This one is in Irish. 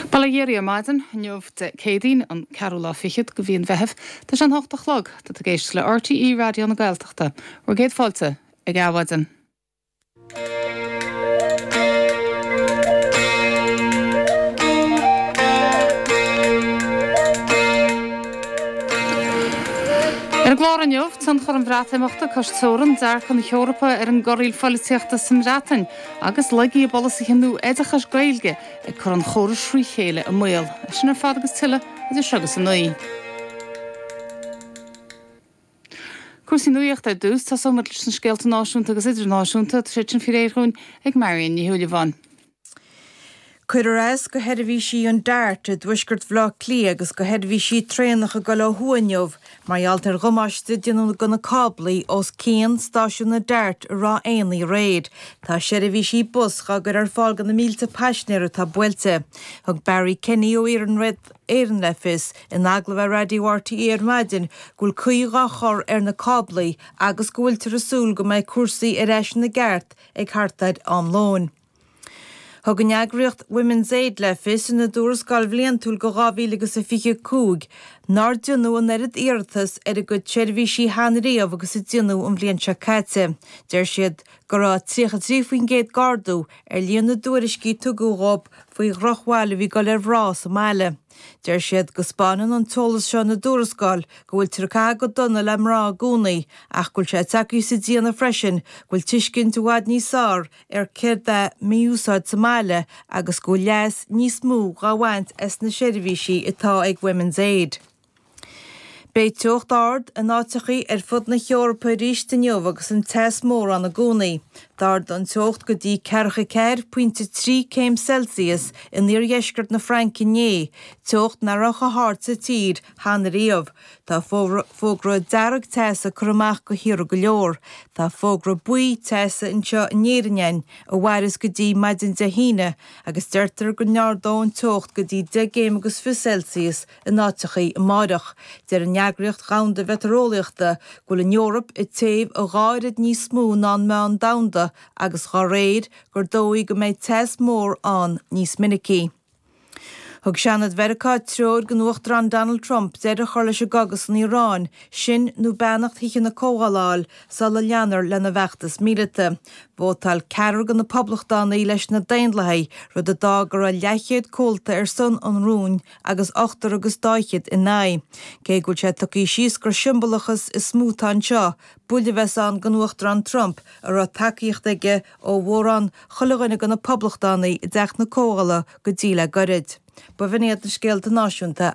Bail ó Dhia oraibh ar maidin inniu, Dé Céadaoin, an 4ú lá fichead de mhí an Mheithimh, tá sé an hocht a chlog, tá tú ag éisteacht le RTÉ Raidió na Gaeltachta, bhur gcéad fáilte ag Adhmhaidin. Ar an gclár inniu, tionchar an Bhreatimeachta, cois teorann, dearcadh na hEorpa ar an gcorraíl pholaitíochta sa mBreatain, agus laigí i bpolasaithe nua oideachais Gaeilge ag cur an chórais thré chéile i mbaol. É sin ar fad agus tuilleadh idir seo agus a naoi. Cúrsaí nuachta ar dtús. Tosóimid leis na scéalta náisiúnta agus idirnáisiúnta, agus iad sin faoi réir dhúinn ag Marion Ní Shúilleabháin. Cuireadh as go sheirbhísí an Dart i dtuaisceart Bhaile Átha Cliath agus go sheirbhísí traenach ag dul ó thuaidh inniu mar gheall ar dhamáiste déanta do na cáblaí os cionn stáisiún an Dart i Ráth Éanaigh aréir. Tá seirbhísí bus dhá gcur ar fáil do na mílte paisinéir atá buailte. Thug Barry Kenny ó Iarnród Éireann le fios in agallamh ar Raidió RTÉ ar maidin go bhfuil caoi dhá chur ar na cáblaí agus go bhfuiltear ag súil go mbeidh cúrsaí ar ais ina gceart ag thart ar am lóin. Thug an eagraíocht Women's Aid le fios ina dtuarascáil bhliantúil go 2025 nár deineadh an oiread iarratas ar a gcuid seirbhísí cheana riamh agus a deineadh an bhliain seo caite. Deir siad go raibh 33% d'ardú ar líon na dtuairiscí a tugadh dhóibh faoi dhrochbhail a bhí ag dul ar mhná sa mbaile. Deir siad go spáineann an t-eolas seo ina dtuarascáil go bhfuiltear ag caitheamh go dona le mná i gcónaí ach go bhfuil sé ag tabhairt le fios freisin go bhfuil tuiscint i bhfad níos fearr ar céard é mí-úsáid sa mbaile agus go bhfuil leas níos mó dhá bhaint as na seirbhísí atá ag Women's Aid. Beidh teocht ard in áiteachaí ar fud na hEorpa aríst inniu agus an teas mór ann i gcónaí. D'ardaigh an teocht go dtí ceathracha a ceathair pointe 3 céim Celsius in iardheisceart na Fraince inné, teocht nach raibh chomh hard sa tír cheana riamh. Tá fógra dearg teasa curtha amach do thíortha go leor. Tá fógra buí teasa anseo in Éirinn ann a mhaireas go dtí maidin Dé hAoine agus deirtear go n-ardóidh an teocht go dtí deich gcéim agus fiche Celsius in áiteachaí amáireach. Deir an Eagraíocht Dhomhanda Mheitéareolaíochta go bhfuil an Eoraip ag téamh a dhá oiread níos mó ná an meán domhanda agus dá réir, gur dóigh go mbeidh teas mór ann níos minicí. Thug Seanad Mheiriceá treoir don Uachtarán Donald Trump deireadh a chur leis an gcogadh san Iaráin, sin nó beannacht Thithe na Comhdhála a fháil sula leanfar lena bhfeachtas míleata. Vótáil ceathrar de na Poblachtánaigh leis na Daonlathaigh, rud a d'fhág go raibh leathchéad comhalta ar son an rúin agus ochtar agus daichead in aghaidh. Cé go bhfuil sé tugtha suas gur siombalachas is mó atá anseo, buille a bheas ann don Uachtarán Trump a raibh tacaíocht aige ó mhórán, chuile dhuine de na poblachtánaigh i dTeach na Comhdhála go dtí le gairid. Ba bhinn iad na scéalta náisiúnta